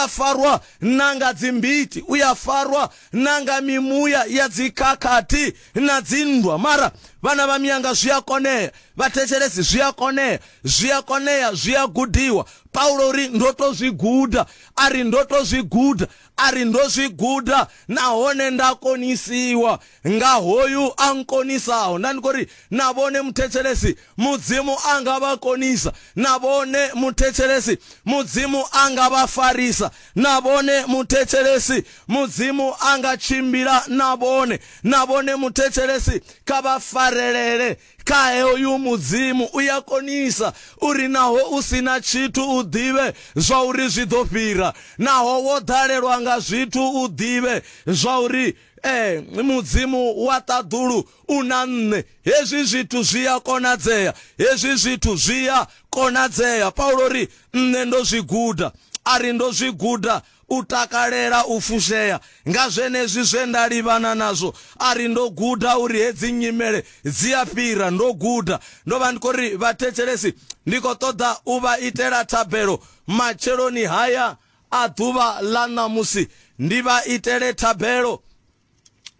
a farwa na nga dzimbiti u ya farwa na nga mimuya ya dzikhakhathi na dzinndwa mara vhana vha miyanga zwi a konea vhathetshelesi zwi a konea zwi a konea zwi a gudiwa paulo uri ndo to zwi guda a ri ndo to zwi guda a ri ndo zwi guda nahone nda konisiwa nga hoyu a nkonisaho. Nda ndi khou ri na vhone muthetshelesi, Mudzimu a nga vha konisa. Na vhone muthetshelesi, Mudzimu a nga vha farisa. Na vhone muthetshelesi, Mudzimu a nga tshimbila na vhone. Na vhone muthetshelesi, kha vha farelele kha hoyu Mudzimu. U ya konisa uri naho u si na tshithu u ḓivhe zwa uri zwi ḓo fhira. Naho wo ḓalelwa nga zwithu u ḓivhe zwa uri Ee, mudzimu wa ṱaḓulu u na nṋe. Hezwi zwithu zwi a konadzea, hezwi zwithu zwi a konadzea. Paulo ri, Nṋe ndo zwi guda. A ri, Ndo zwi guda u takalela u fushea nga zwenezwi zwe nda livhana nazwo. A ri, Ndo guda uri hedzi nyimele dzi a fhira. Ndo guda. Ndo vha ndi khou ri vhathetshelesi ndi khou ṱoḓa u vha itela thabelo matsheloni haya. A Ḓuvha ḽa ṋamusi ndi vha itele thabelo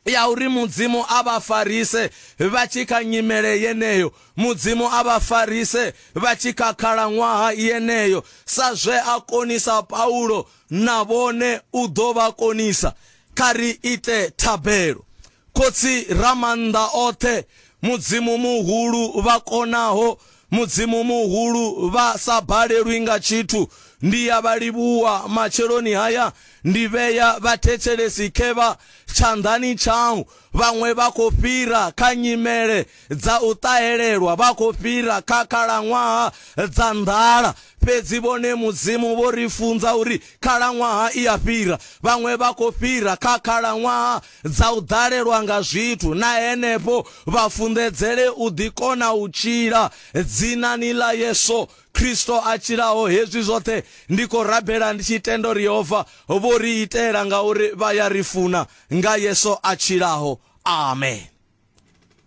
ya uri Mudzimu a vha farise vha tshi kha nyimele yeneyo, Mudzimu a vha farise vha tshi kha khalaṅwaha yeneyo, sa zwe a konisa Paulo, na vhone u ḓo vha konisa. Kha ri ite thabelo. Khotsi Ramaanḓaoṱhe, Mudzimu muhulu, vha konaho, Mudzimu muhulu, vha sa balelwi nga tshithu, ndi ya vha livhuwa matsheloni haya, ndi vhea vhathetshelesi khevha tshanḓani tshau, vhaṅwe vha khou fhira kha nyimele dza u ṱahelelwa vha khou fhira kha khalaṅwaha dza nḓala. Fhedzi vhone Mudzimu vho ri funza uri khalaṅwaha i a fhira. Vhaṅwe vha khou fhira kha khalaṅwaha dza u ḓalelwa nga zwithu na henefho vha funḓedzele u ḓi kona u tshila dzinani ḽa Yesu Kristo a tshilaho. Hezwi zwoṱhe ndi khou rabela ndi tshi tenda uri Yehova vho ri itela ngauri vha ya ri funa nga Yesu a tshilaho. Amen.